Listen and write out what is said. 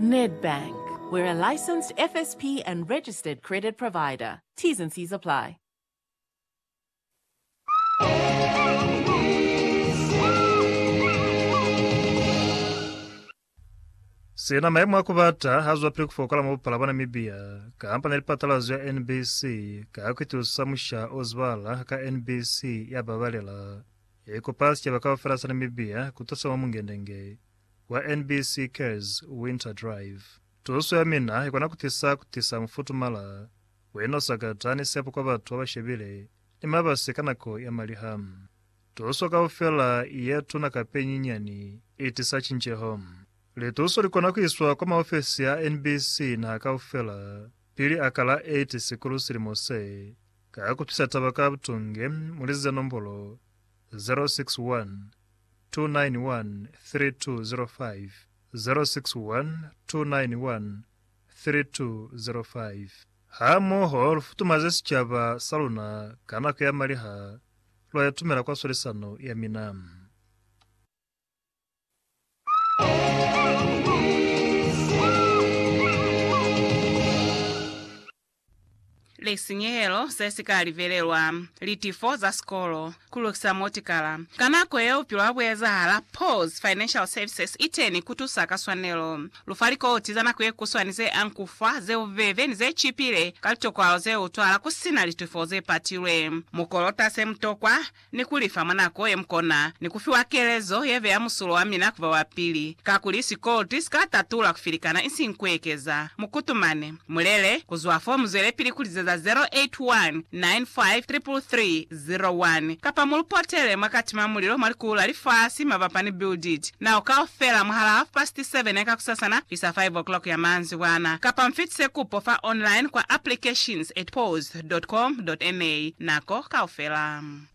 Nedbank, We're a licensed FSP and registered credit provider. T's and C's apply. Sina maemo a ku bata ha zwapili ku fokola mwa bupala bwa Namibia, kampani ya lipatalazo ya NBC ka ku itusa musha o zibala ka NBC ya babalela, ya ikopa sicaba kaufela sa Namibia ku tusa mwa mungendenge wa NBC Cares Winter Drive. Tuso ya mina ikona kutisa kutisa mufutumala we no sakata ni sepo kwa batu baba shebile ni mabasi ka nako ya maliha. Tuso kaufela ye tuna kape nyinyani itisa cinceho. Lituso likona kuiswa kwa maofesi a NBC naha kaufela pili aka la 8 Sikulu silimo se, ka kutwisa taba ka butunge muli ze nombolo 061 729 999. 291-3205, Hamoho lu futumaze sicaba sa luna ka nako ya maliha lwa itumela kwa swalisano ya mina. lisinyehelo se si ka livelelwa, litifo za sikolo, ku lukisa motikala. Ka nako yeo bupilo ha bu ezahala. Paul's Financial Services i teni ku tusa ka swanelo. Lu fa likoti za nako ye kuswani ze anku fa, ze bubebe, ni ze cipile ka litokwalo ze utwala ku si na litifo ze patilwe. Mu kolota se mu tokwa, ni ku li fa mwa nako ye mu kona, ni ku fiwa kelezo ye beya musulo wa mina ku ba wa pili, kakuli sikolti si ka tatula ku filikana isiñi ku ekeza. Mu kutumane. Mu lele, ku zwa fo mu zwelepili ku lizeza 0819533301, kapa mu lu potele mwa kati mwa mulilo mwa likulu la lifasi mabapa ni Build It Now kaufela mwahalaa hafupasiti 7 ya kakusasana kuisa 5 o'clock ya maanzibwana, kapa mu fitise kupo fa online kwa applications at pause.com.na nako kaufela.